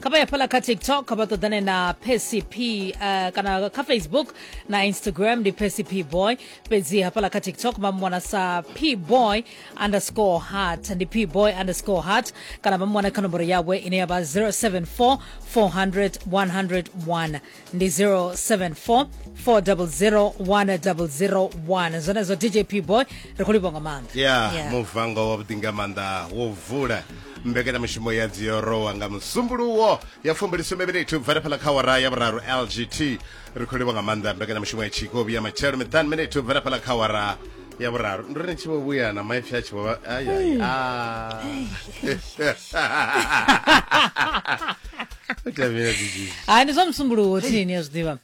kha vha ya fhala kha tiktok kha vha ṱoḓane na pcp uh, eh, kana kha facebook na instagram ndi pcp boy fhedzi hafhala kha tiktok vha mwana sa p boy underscore heart ndi p boy underscore heart kana vha mwana kha nomboro yawe ine ya vha 074 400 101 ndi 074 400 1001 zwenezwo dj p boy ri khou livha nga maanḓa ya Yeah. muvango wavhuḓi nga maanḓa wo vula mbekanyamishumo ya dziorowa nga musumbuluwo ya fumbilisumbe minithu bva fhala kha wara ya vhuraru lgt ri khou livha nga maanḓa mbekanyamishumo ya tshikobi ya matshelo miṱanu minithu bva fhala kha wara ya vhuraru ndo ri tshi vho vhuya na maipfi a tshi vho hai ndi zwa musumbuluwo thinini ya zwiḓivha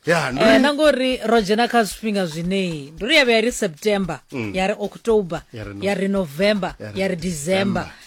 eh, na ngori ro dzhena kha zwifhinga zwineyi ndi ri ya vhuya ri september mm. ya ri october ya ri november ya ri december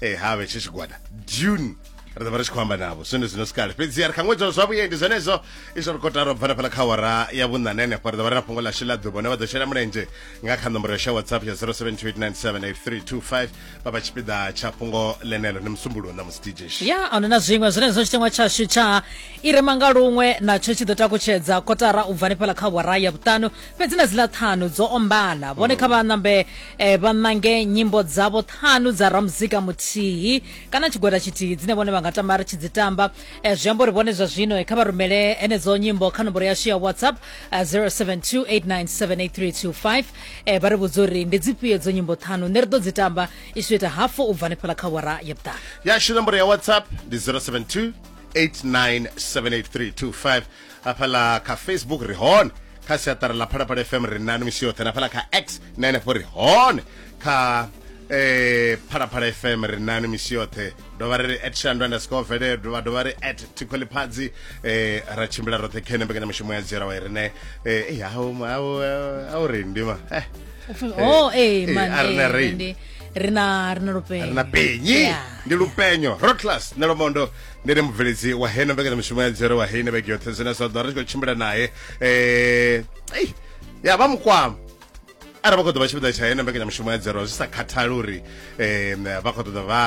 e eh, ha vhe tshi tshigwada june ri ḓovha ri tshi khou amba navho zwine zwino sikale fhedziha ri kha ṅwedzi wa zwa vhuendi zwenezwo izwo ri kotara u bvana fhala kha wara ya vhuṋane henefho ri ḓovha ri na fhungo ḽashu ḽa ḓuvha hune vha ḓo shela mulenzhe nga kha nomboro yashu ya whatsapp ya 0728978325 vha vha tshipiḓa tsha fhungo ḽenelo ni musumbuluwo na musi dj ya ano na zwiṅwe zwenezwo tshiteṅwa tshashu tsha i re manga luṅwe natsho tshi ḓo takutshedza kotara u bvani fhala kha wara ya vhuṱanu fhedzi na dziḽa ṱhanu dzo ombana vhone kha vha nambe eh, vha ṋange nyimbo dzavho ṱhanu dza ramuzika muthihi kana tshigwada tshithihi dzine vhone vha nga tama ri tshi dzi tamba Eh, zwi amba uri vhone zwa zwino eh, kha vha rumele henedzo nyimbo kha nomboro yashu ya whatsapp eh, 0728978325 eh, vha ri vhudza uri ndi dzifhio dzo nyimbo ṱhanu nṋe ri ḓo dzi tamba i tshi ita hafu u bva hanefhala kha wara ya vhuṱanu yashu nomboro ya whatsapp ndi 072 8978325 hafhaḽa kha facebook ri hone kha siaṱari ḽa phalaphala fm ri nani misi yoṱhe na hafhaḽa kha x na henefho ri hone kha eh phalaphala fm ri nani misi yoṱhe dovha ri ri at shandu underscore vele dovha dovha ri at tikholiphatsi eh ra tshimbila roṱhe khene mbekanyamushumo ya dzhiela wa i rine eh ei, au au au ri ndima eh oh eh Eh, man a re na eh, rain. ndi- ri na ri na lupela ri na penyi Yeah. ndi lupenyo rotlas na lomondo ndi ne mubveledzi wa heno mbekanyamushumo ya dzere wa heine vhege yoṱhe zwine zwa ḓo ri tshi khou tshimbila naye um ei ya vha mukwama arali vha khou ḓo vha tshipiḓa tsha heno mbekanyamushumo ya dzero zwi sa khathali uri um vha khou ṱoḓa vha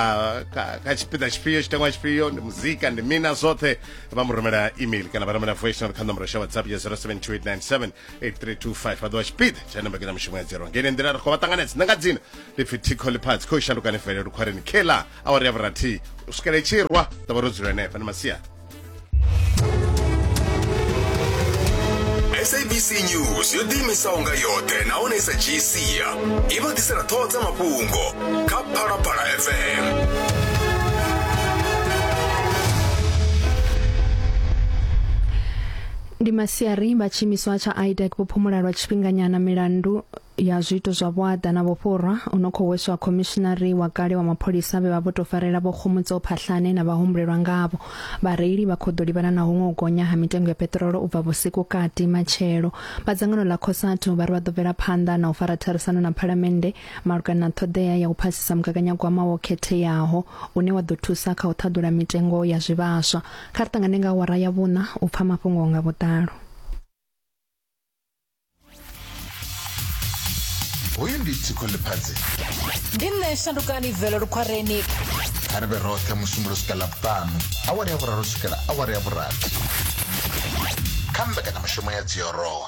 ka- ka tshipiḓa tshifhio tshitangwa tshifhio ndi muzika ndi mina zwoṱhe vha mu rumela email kana vha rumela voice note kha nomboro sha whatsapp ya 0728978325 vha ḓo vha tshipiḓa tsha heno mbekanyamushumo ya dzero ngene nḓila ri khou vha ṱanganedza nanga dzina ndi pfi thikho ḽiphatsi khou shandukani fele lukhwareni kela awara ya vhurathihi u swikela itshi rwa ḓo vha ro dzula henefha ndi masiari sabc news yo ḓiimisaho nga yoṱhe nahone i sa dzhii sia i vha ḓisela ṱhoho dza mafhungo kha phalaphala fm ndi masiari vha tshiimiswa tsha idec vho phumula lwa tshifhinganyana milandu ya zwiito zwa vhuaḓa na vhufhurwa u no khou hweswa khomishinari wa kale wa mapholisa vhe vha vho tou farela vho Khomotso Phahlane na vhahumbulelwa ngavho. Vhareili vha khou ḓo livhana na huṅwe u gonya ha mitengo ya peṱirolo u bva vhusiku kati matshelo. Vha dzangano ḽa Cosatu vha ri vha ḓo bvela phanḓa na u fara tharisano na Phalamennde malugana na ṱhoḓea ya u phasisa mugaganyagwama wo khetheaho une wa ḓo thusa kha u ṱhaḓula mitengo ya zwivhaswa. Kha ri ṱangane nga awara ya vhuṋa u pfa mafhungo nga vhuḓalo. hoyu ndi tsiko ḽifhadzi ndi nṋe shandukani velo lukhwareni kha ri vhe roṱhe musumbulo swika ḽavhuṱanu awara ya vhuraru swikela awara ya vhurathi kha mbekanyamishumo ya dziorowa